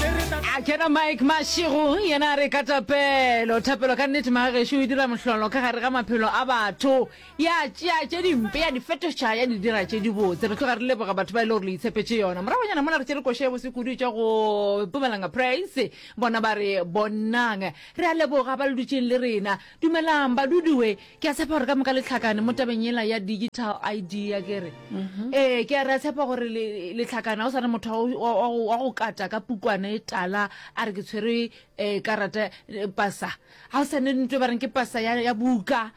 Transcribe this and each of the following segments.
a kena mike mašego yena a re ka tapelo thapelo ka nnete magagešo e dira mohlolo ka gare ga maphelo a batho ya tšea tše dimpe ya di fetoša ya di dira tše dibotse re tloga re leboga batho ba e le gore le itshepetše yona moragonyana mona re tšere košo ya bosekudu tša go pumalanga praise bona ba re bonang re a leboga ba le dutšeng le rena Dumelang badudi we ke a tshepa gore ka moka letlhakane mo tabeng yela ya digital id ya kere mhm. ee ke a re a tshepa gore letlhakane ga o swane motho wa go kata ka pukwane e tala a re ke tshwere um eh, karata eh, pasa ga o sane nto e ba reng ke pasa ya buka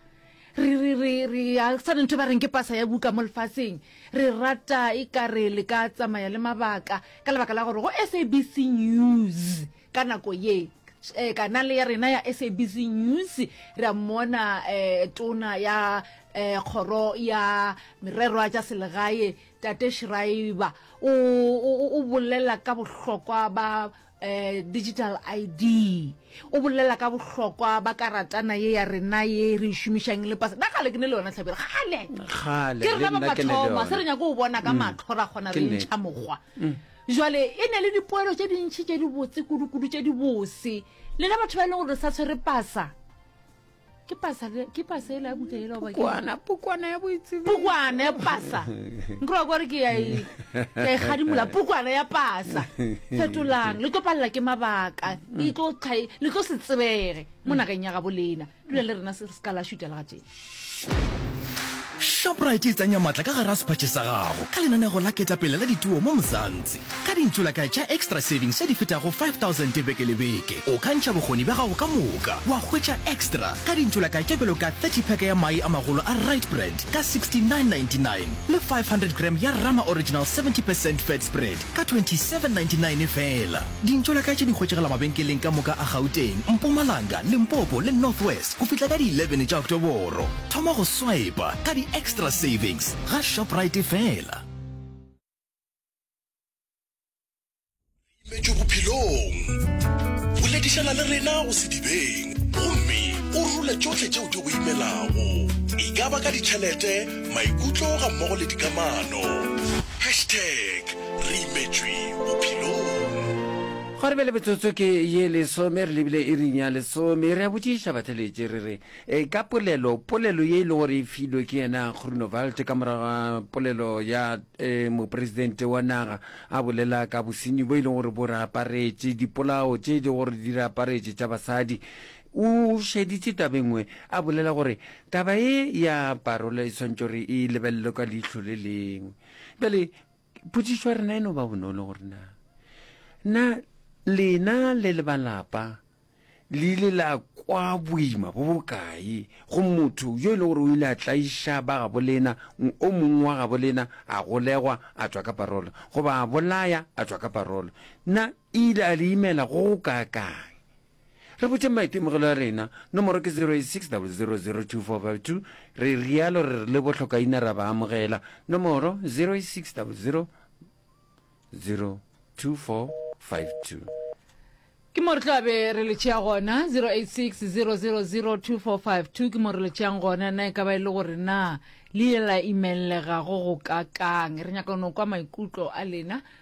ga sane nto e ba reng ke pasa ya buka mo lefatsheng re rata e kare le ka tsamaya le mabaka ka lebaka la gore go sabc news Ka nako ye, eh, kanale ya rena ya SABC News re a mmona eh, tona ya eh, kgoro ya mererwa tša selegae tate Schreiber o, o, o- o bolela ka bohlokwa ba eh, digital id o bolela ka bohlokwa ba karatana ye ya rena ye re e šomišang le pasa na gale ke ne le yona tlhabelo gale Kgale, ke le rena ba nna ke ne le mathoma se re yona. nyako o bona ka matlho ra kgona Ke re nnete. ntšha mokgwa Jwale e ne le dipoelo tše dintši tše di botse kudu-kudu tše di bose. Lena batho ba e leng gore sa tshwere pasa. Ke pasa le ke pasa e la buka e la ba ke. Pukwana, pukwana ya boitsebi. Pukwana ya pasa. Nkro gore ke ya e ke e gadimola pukwana ya pasa. Fetolang, le tlo palla ke mabaka. E tlo tlha le tlo se tsebege mo nageng ya gabo lena. dula le rena se re se ka la šutela ga tee shoprite e tsenya maatla ka gare a sephatše sa gago ka lenanego la ketapele la dituo mo mozantsi ka dintšolakae tša extra savings tša di fetago 5000 beke le beke o ka ntšha bokgoni bja gago ka moka wa hwetša extra ka dintšolakae tša bjalo ka 30 peke ya mai a magolo a right brand ka 6999 le 500 gram ya rama original 70 percent fat spread ka 2799 feela. Dintšo la ka tše di hwetšagala mabenkeleng ka moka a Gauteng, Mpumalanga, Limpopo le North West go fihla ka di 11 tša Oktoboro. Thoma go swipa ka di-extra savings ga Shoprite feela. Imetšwe Bophelong. Boledišana le rena go sedibeng gomme o rule tšohle tšeo di go imelago, e ka ba ka ditšhelete, maikutlo gammogo le dikamano. Hashtag re imetšwe bophelong. Gwa re bjale metsotso ke ye lesome, re lebile iring ya lesome. Re a botšiša batheletši re re, ka polelo, polelo ye e lego gore e filwe ke yena Groenewald ka morago ga polelo ya Mopresidente wa naga a bolela ka bosenyi bo e lego gore bo re aparetše, dipolao tše e lego gore di re aparetše tša basadi, O šeditše taba e nngwe, a bolela gore taba ye ya parola e swanetše gore e lebelelwe ka leihlo le lengwe. Bjale, potšišo ya rena e no ba bonolo gore na, na lena le le balapa le ile la kwa boima bo bokae go motho yo e le gore o ile a tlaiša ba gabo lena, o mongwe wa gabo lena a golegwa a tšwa ka parola, goba a bolaya a tšwa ka parola? Na e ile a le imela go go kaakaang? Re botšeng maitemogelo a rena, nomoro ke 0860002452, re realo re re le bohlokaina ra ba amogela, nomoro 0860002452. Ke mo re tla be re le tšea gona, 0860002452, ke mo re le tšeang gona, na e ka ba e le gore na le ile la imellegago go kakang? Re nyaka go no kwa maikutlo a lena.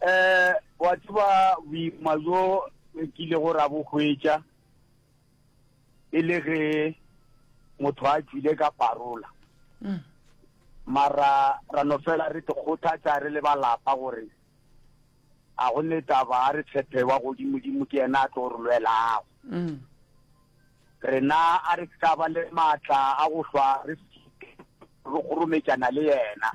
Eh, wa tseba boima jo e ke ile go ra bo hwetša e le ge motho a tswile ka parola mm. mara ra no fela re dikgothatsa re le balapa gore a go ne taba a re tshepe wa godimodimo ke yena a tlo re lwelago mm. rena a re ka ba le maatla a go hlwa re re kgorometšana le yena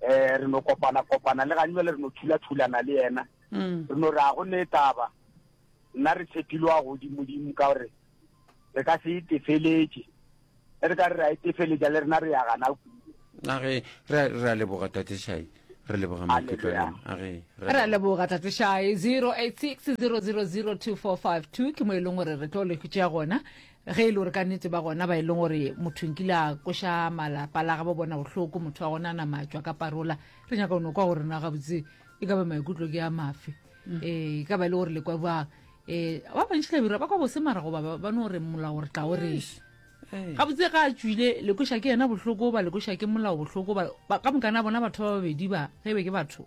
eh re no kopana kopana le gane le re no thula thulana le yena mm. re no re a go ne taba nna re tshepilwe a godimo dimo ka gore re ka se itefeletse e re ka re ra itefeletsa le rena re ya gana age re a leboga tatešai re leboga maikutlo age re a leboga tatešai 086 000 2452 ke mo e leng gore re tlo le gona ge e le gore ka nnete ba gona ba e leng gore motho nkile a koša malapa la gabo bona bohloko motho wa gona a nama a tšwa ka parola re nyaka ono kwa gore na gabotse e ka ba maikutlo ke a mafe um e ka ba e le gore lekwa bang um ba bantšhi labira ba kwa bose mara goba ba- ba no gore molao gore tla o reng Eh, gabotse ga a tswile lekoša ke yena bohloko ba lekoša ke molao bohloko ba- ba- ka mokana bona batho ba babedi ba ge e be ke batho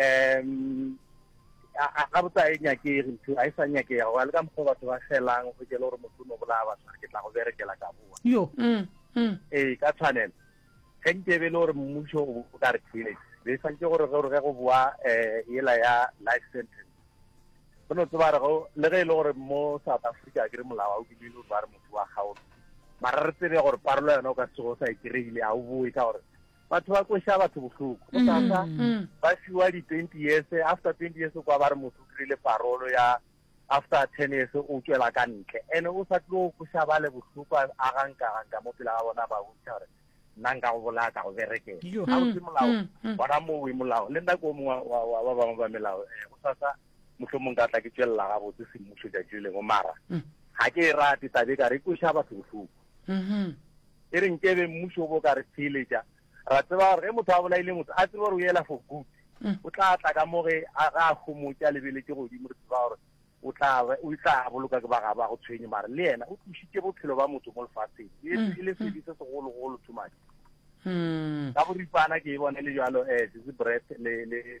um ga botsa e nyakege ntho a e sa nyakega go le ka mokgwa batho ba felang go jele gore motho o no bolaya batho ke tla go berekela ka boa yo mm, mm. ee ka tshwanelo ge nke e be le gore mmuso o ka re theletše be santse gore gore ge go boa um ela ya life sentence go no tseba re le ge e le gore mo south africa ke re molao a o bile le gore ba re motho wa gaolo mara re tsebe gore parolo yona o ka sego sa e kry-ile a o boe ka gore batho ba kweša batho bohloko go tata ba fiwa di-twenty years after twenty years kwa ba re motho o dirile parolo ya after ten years o tswela ka ntle and o sa tlo kweša ba le bohloko a ganka ganka mo pela ga bona ba bontšha gore nna nka go bolaya ka go berekela ga o se molao bona mowe molao le nna ko mongwe wa ba bangwe ba melao um go sasa motlho mongwe ka tla ke tswelela gabotse semmuso jatši le lengwe mara ga ke e rate tabe ka re kweša batho bohloko e re nke be mmušo o bo ka re theeletša ra tseba gore ge motho a bolaile motho a tseba gore o ela for good o tla tla ka mo ge a ga a homotša lebeletse godimo re tseba gore o tla o tla boloka ke ba ga ba go tshwenye mare le yena o tlisitse bophelo ba motho mo lefatsheng e le mm, mm. sedi se segolo golo too much mm. ka boripana ke e bone le jalo um eh, sese breath le le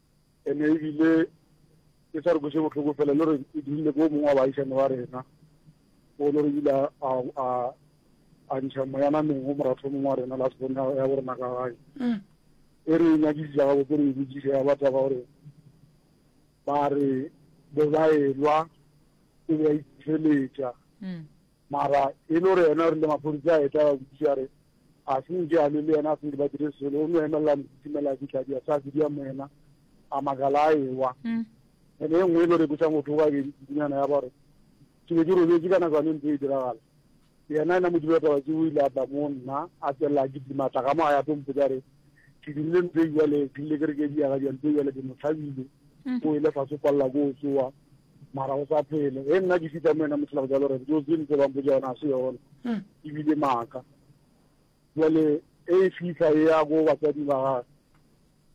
Ene ebile ke sa re kweše bohloko fela le gore e dirile ko mongwe wa baagišane wa rena o le gore ile a a ntšha moyana mengwe moratho mongwe wa rena la sebone ya go rena ka gae mm. e re nyakisisa gabo ke re e botsise ya bataba gore ba re bo ba elwa o be a itšheletša mm. Mara e le gore yena o rile maphodisa a etla ba botsiša a re a se nke a lwe le yena a se nke ba dire selo, o no emelela mokhutimela a fitlha dia sa fidia mo yena a makala a ewa. Mm. Ene e nngwe e le gore e bosa motho wa bedi kudunyana ya gore ke be ke robetse ka nako yane ntse e diragala yena ena modimo wa taba ke o ile a tla mo nna a tswelela ke dimatla ka mo a ya tlo mpotsa re ke dirile ntse jale ke rile ke re ke diaga dia ntse jale ke mo tlhabile mm. o ile fa se kwalela ko o tsoa mara go sa phele e nna ke fita mo ena mothela go jalo re dio tse ntse bang boja yona a se yona hmm. e bile maaka jale e e fitlha e ya go batsadi ba gage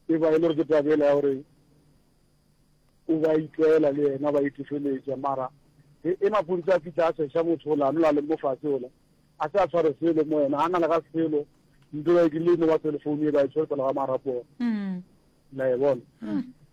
e ba e le gore ke tabela ya gore o ba itlela le ena ba itefeletša mara e, e mapontsi a fitlha a seša motho ola a nola leng mo fatshe ola a se a tshware selo mo ena a na le ga selo nto ba e ke le mo ba telefounu e ba e tshware pele ga marapona hmm. la e bona hmm.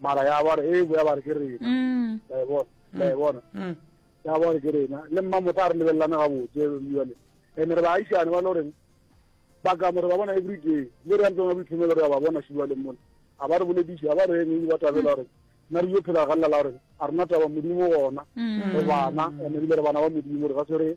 mara ya ba re e bo ya ba re ke rena mm. la e bona la e mm. bona mm. ya ba re ke rena le mma motho a re lebelelana ga botse jale ene re baagišane ba le goreng ba ka mo re ba bona every day le re ya ntseng ba boitlhomelo re ya ba bona šiwa le mona a ba re bolediše a ba re eng ba tabela gore na re yo phela ga lela la gore a rena taba modimo gona go bana ene ebile re bana ba modimo re ga se re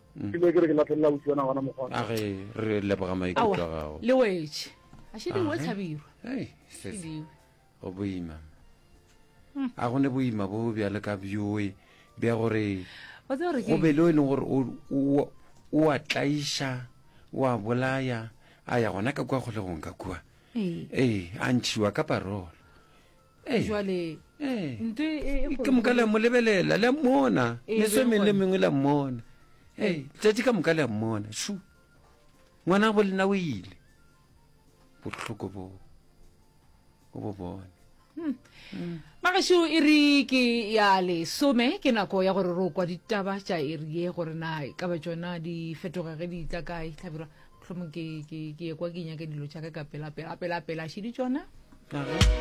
mm. ke ke re ke latlhelela ausi wa nagona mokgona a ge re leboga maikutlo gago le wetse a šediwe tlhabirwa go boima hmm. a go ne boima bo bjale ka bjoe bja gore go be le o e leng gore o a tlaiša o a bolaya a ya gona ka kua kgolegong ka kua ee a ntšhiwa ka parolo Ee. jwale Ee. ntho e- e- e ke moka le a mo lebelela le a mmona Ee, meso e mengwe le gone. mengwe le a mmona ee letšatši ka moka le a mmona shu ngwana bo lena o ile bohloko bo o bo bone magašo e re ke ya lesome ke nako ya gore ro kwa ditaba tša eri ye gore na e ka ba tšona di fetoga ge di tla kae tlhabirwa mohlomong ke ke- ke ekwa ke nyake dilo tšaka ka pela pela pela pela šedi tšona Aga.